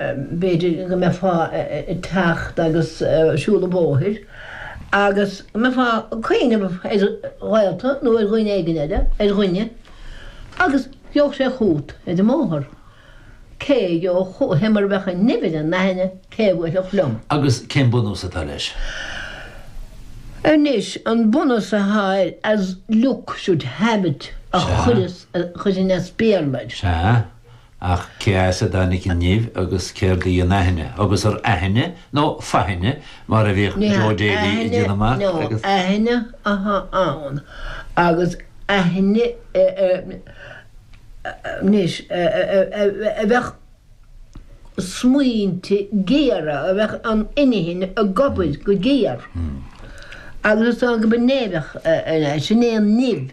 b'fhéidir go mbeifeá ag teacht agus siúl an bhóthair agus go mbeifeá ag cuimhneamh ar ghaolta nó ar dhuine éigin eile, ar dhuine, agus gheobhadh sé chugat ar an mbóthar. Cé a gheobhadh chugat? Hé, mura mbeadh an nimh ar an aithne, cé a bhuailfeadh liom? Agus cén bunús atá leis? Anois, an bunús atá air, as luck should have it, a chuireas, a chuireann as Béarla air. Sea. Ach cé as a dtáinig an nimh agus céard í an aithne, agus ar aithne nó faithne mar a bhíodh Joe Daly ag déanamh amach? Ní aithne ná aithne atá ann agus aithne anois a bheadh smaointe géara, a bheadh an inchinn ag obair go géar agus ag obair nimhneach anois, sin é an nimh.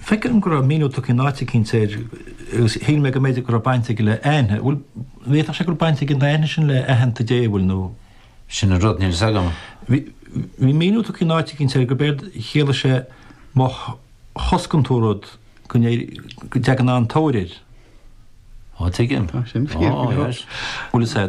Feicim go raibh míniú tugtha in áit eicínt air agus shíl mé go mb'fhéidir go raibh baint aige le aithne. Bhuel, an bhféadfadh sé go raibh baint ag an aithne sin le aitheanta Dé, bhuel nó. Sin an rud, níl fhios agam. Bhí míniú tugtha in áit eicínt air gurb éard a chiallaigh sé má choscann tú rud go dtagann an-tóir air. Ó, tuigim. Tá sin fíor go leor. Bhuel, is é.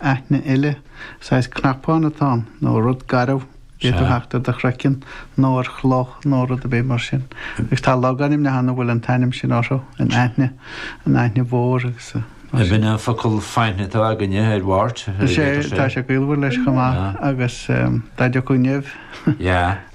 aithne eile, saghas cnapán atá ann, nó rud garbh, a d'fhéadfadh a theacht ar do chraiceann, nó ar chloch, nó rud ar bith mar sin. Agus tá logainmneacha ann a bhfuil an t-ainm sin orthu, an Aithne, an Aithne Mhór agus mar sin. Ab in an focal faithne atá againne ar wart? Is é, tá sé gaolmhar leis chomh maith, agus dá dtiocfadh nimh.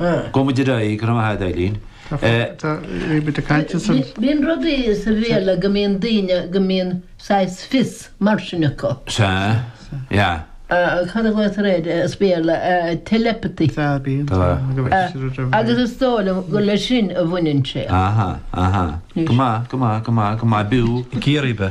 Gabhfaidh muid ar aghaidh, go raibh maith agat Eileen. Bíonn rudaí sa Bhéarla go mbíonn daoine go mbíonn saghas fios mar sin acu. Sea, yeah. Cad a ghlaotar air as Béarla, telepathy. Sea, bíonn. Agus is dóigh liom gur le sin a bhaineann sé. Aha, aha. Go maith, go maith, go maith, go maith, b'fhiú. Ciarraí be.